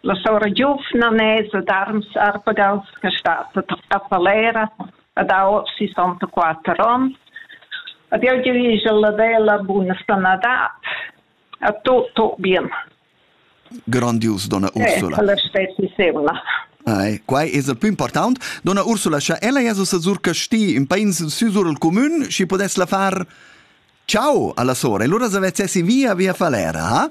La sora giuvna nesa Darms Arpagals che stat a Falera ed ha oz sessantaquatter onns ed jeu giu igl avel a buna sanadad. A tu, Tobian. Grandius, donna Ursula. Eh, la stessissima. Ei, quai es il più important. Donna Ursula, scha ella es ussa sur Casti, in pains süsur il comün, schi podess la far ciao alla sora. E lura se vezzessi via via Falera, ha?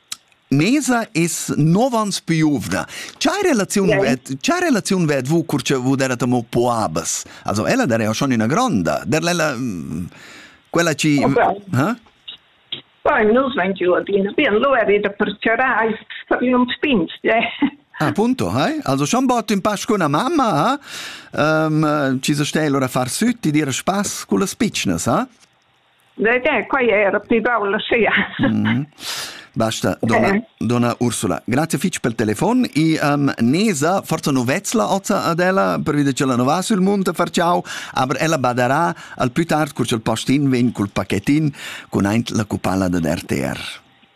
Mesa es novans piuvna. Cha relaziun yeah. vet, cha relaziun vet vu cur che vu der amo po abas? Also ella der ja schon üna gronda. Der ella mm, quella ci ha? Vain nus vain giù adina bien, lo è da percerai per un spinst, yeah. Appunto, hai? Also schon bot in pasch con una mamma, ha? Um, ci se stell ora far süt, ti dir spaß con le spicnas, ha? quai è era pli baul sia. Mm. Basta, donna, eh. donna Ursula, grazie fitg pel telefon e um, Nesa, forza novezla oza ad ella, per vide che la nova sul monte farciau, aber ella badarà al più tard, cur il postin vegn col pacchettin con aint la cupala da RTR.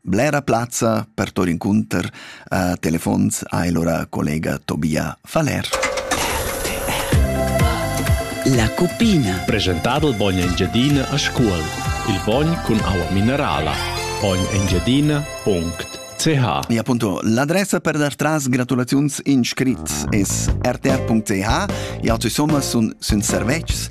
Blera plazza per tour incunter a telefons ha el ora collega Tobia Faller. La cupina. Presentado il bogn Engiadina a scuol. Il bogn cun aua minerala. bognengiadina.ch E appunto l'adressa per dar tras gratulaziuns in scrit es rtr.ch e altri somma sun, sun servetschs